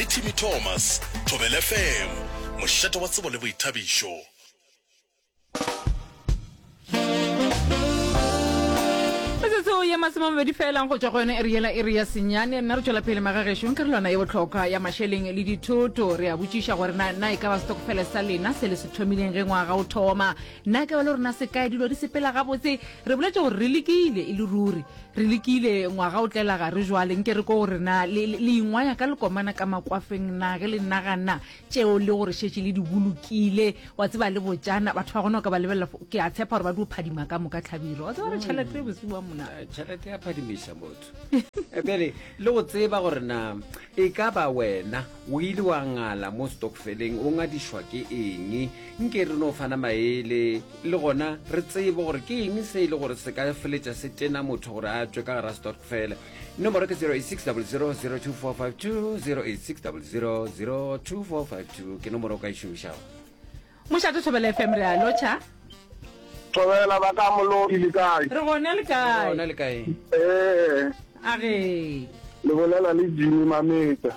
Le Timmy Thomas, Thobela FM, mošate wa tsebo le boithabišo. metsotso ye masome a mabedi felang go tšwa go yone ere yela ere ya senyane nna re tšwela pele magagešu ka relwana ye botlhokwa ya mašeleng le dithoto re a botšiša gore na na e ka ba setokofele sa lena se le se thomileng ge ngwaga o thoma na e ka ba le rona se kae dilo di sepela gabotse re boletše gore re lekile e le ruri Re lekile ngwaga o tlela gare jwale, nke re ko gore na le, le, le ingwaya ka lekomana ka makwafeng na, ge le nagana tšeo le gore šetše le di bolokile, wa tseba le botšana, batho ba gona o ka ba lebelela, fo- ke a tshepa gore ba dio phadima ka moka tlhabiro, wa tseba re tšhelete bosiu wa mona. Eh, tšhelete ya phadimiša motho Eh, bjale le go tseba gore na e ka ba wena o ile wa ngala mo stokfeleng o ngadišwa ke eng nke re no fana maele le gona re tsebe gore ke eng se e le gore se ka feletša se tena motho gore a tšwe ka gara stokfele nomoro ke 0860024520 0860024520 ke nomoro o ka e šomišago mošate thobela fm re a lotšha thobela ba ka molodi le kae re gona le kae gona le kae ee a re le bolela le jimi mametsa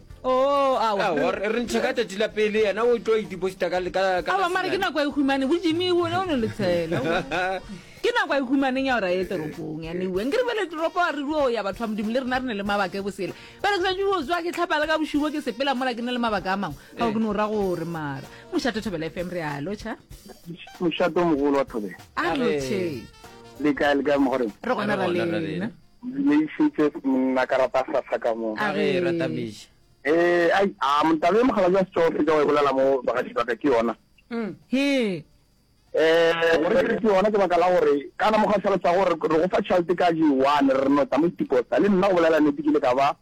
Oh, awa re ntshe ka tsatsi la pele yena o tlo ideposita ka mare ke nako a ihumane bo jimi o ne o ne letshela ke nako a ihumaneng ya gore a ye toropong yane ueng ke re bele toropo a re duo ya batho ba modimo le rena re ne le mabaka e bosele bele ke santse o tswa ke tlhapa le ka bošubo ke sepela mola ke ne le mabaka a mangwe ga o ke ne o ra gore mara mošato thobela fm re a lotšha mošato mogolo wa thobela a lotšhe le kae le kae mogoreng re gona ra lena Buleišetše monna ka rata sasa ka mo. Ka ge e rata meša. Ee, ai, a motaba e mokgalabje wa setšogo fetša wa e bolela mo bagaši ba ka ke yona. Hee. Ee, gore ke re ke yona ke baka la gore kana mo gašalo sa gore re go fa tšhalete ka je one re no tla mo itikosta le nna go bolela nete ke ile ka ba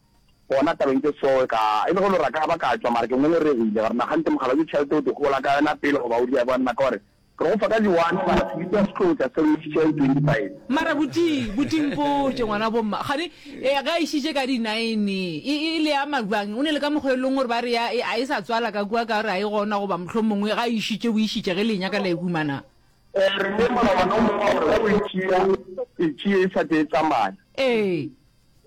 gona tabeng tše soe ka e le go lora ka ba ka tšwa mara ke ngongoregile gore nagante mokgalabje tšhalete o di gola ka yona pele goba o di ya bwa nna ka gore Re go fa ka di one mara se bitsa setlotša se re išitše ka di twenty five. Mara buti, buti mpotše ngwana wa bo mma, kgane e ge a išitše ka di nine e e le ama bjang? O ne le ka mokgwa e leng gore ba re ya e a e sa tswala ka kua ka gore a e gona goba mohlomongwe ga a išitše o išitše ge le e nyaka la e humana? E re le molawana o mongwe wa gore ge o e tšea e tšee e sa tee e tsamaya. Ee.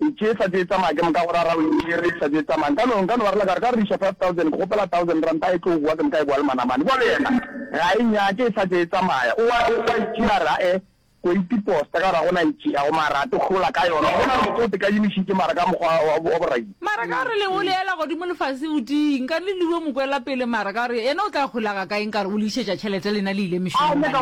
E tše sa tše tsamaya ke moka go ra rawe e re sa tše tsamaya nka no nka no ba rela ka re ka re riša 5000 ke kgopela 1000 ranta e tlo goa ke moka e boa le manamane bjale yena ga e nyake e sa tše tsamaya o wa o wa e tšea ra e go itiposta ka gore ga gona e tšea go mara to hlola ka yona gona re tlo teka yimiši ke mara ka mokgwa wa borai Mara ka gore le o leela godimo lefase o di nka le liwe mokwela pele mara ka gore yena o tla holaga ka eng ka gore o le išetša tšhelete lena le ile mešomong banna.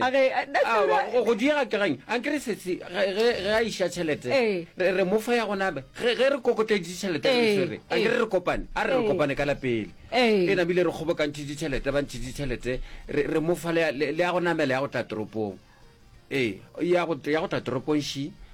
A ge, eh, that's Awa, right. go go diega ke gaeng a nkere sesi ge ge- ge a iša tšhelete Ee. re re mofa ya gona be ge ge re kokotleditše tšhelete re Ee, e swere a ee. nkere re kopane a re re Ee. kopane ka lapele Ee. e namile re kgobokantšhitše tšhelete ba ntšhitše tšhelete re re mofa le ya- le le ya go namela ya go tla toropong ee ya go ya go tla toropong shi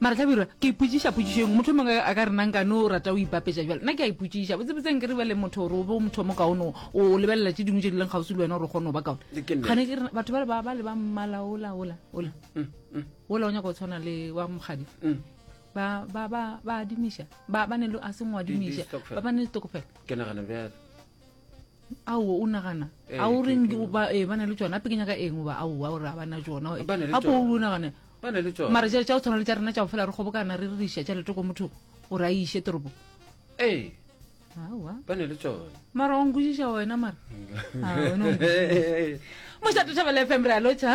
Mara Hlabirwa, ke ipotšiša potšišo engwe. Motho mongwe a ka re na nka no rata o ibapetša bjalo. Nna ke a ipotšiša, botsebotseng ke re bjale motho gore o be o motho o mokaone o lebelela tše dingwe tše di leng kgauswi le wena gore o kgone go ba kaone. Ke nnete. Kgane ke re batho bale ba ba le ba mmala ola ola ola ola o nyaka go tshwana le wa mokgadi. Ba ba ba ba adimiša. Ba ba ne le a seng wa Di- di adimiša. stokvel. Ba ba ne le stokofela. ke nagana bjalo ao o nagana eh, a o reng ba eh, na le tsona ape ke nyaka eng oba ao a gore a bana tsona apo o nagana mara jale tsa o tshwana le tsa rena tsa go fela re kgobokana re re iša tšhelete ko motho o re a iše toropo eh. mara o nkwešiša wena mara ah, mošato thabela fm re a lotšha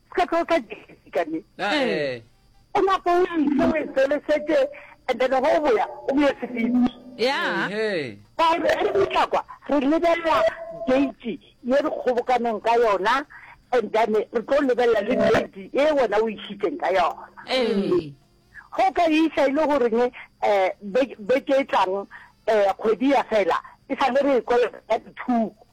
o ka tlo ka jesi ka ne Ee. o napa o ise o e felesetse and then go o boya o boye sefifi ya Ehe. ka re re ditlakwa re lebelela date ye re kgobokaneng ka yona and then re tlo lebelela le date e wena o išitseng ka yona ee go ka isa e le goreng um beke e tlang um kgwedi ya fela e sa le re e kolota ka dithuko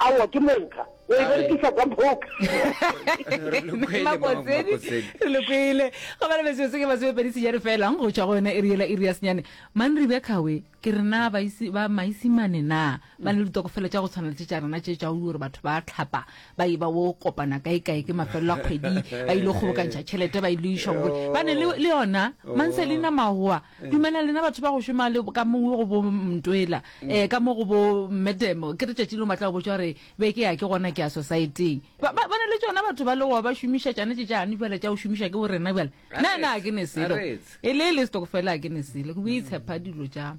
Aowa ke monka. O e berekisa ka book. Re lo kwele, Mama Makotsedi. Makotsedi. Re lo kwele. Go bala metsotso se ke masomepedi senyane fela go tšwa go yone e riela iri ya senyane. Manri bja Khawe ke re na ba isi ba maisimane na ba na le ditokofela tša go tshwana le tše tša rena tše tša o gore batho ba tlhapa ba e ba wo kopana kae kae ke mafelelo a kgwedi ba ile go kgobokantšha tšhelete ba ile išwa go ba ne le le yona Manselina Mahoa Dumelang lena batho ba go šoma le ka mongwe go bo Mntwela eh ka mo go bo Medemo ke re tšatši le matla go botša gore be ke ya ke gona ke ya society-eng ba ba ne le tšona batho ba le go ba šomiša tšane tše tšane bjale tša go šomiša ke borena bjale na na ke ne selo e le le stokofela ke ne selo go itshepa dilo tša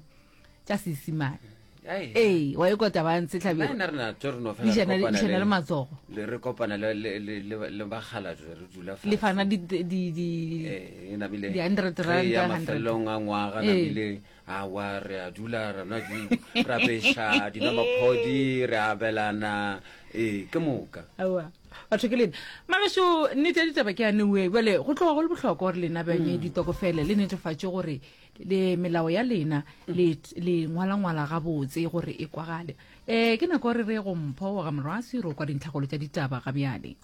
tša seesimane ee wa e kwa taba ntse tlhabena re na tso re no fela Dijana- re kopana dijana le matsogo. le re kopana le le le le- le bagala tse re dula fa le fana di- di- di- di- Eh, e namile Di 100 re rand, ya 100. mafelelong a ngwaga Ee. namile awa re a dula ra nwa di ra beša dina maphodi re abelana ee ke moka aowa batho ke lena magašo nnete ya ditaba ke yane oe bjale go tloga go le bohlokwa gore lena bjanye ditokofele le netefatše gore le melao ya lena le le ngwalangwala gabotse gore e kwagale um ke nako re re go mpho wa gamorwasi ro kwa dintlhagolo tša ditaba ga bjale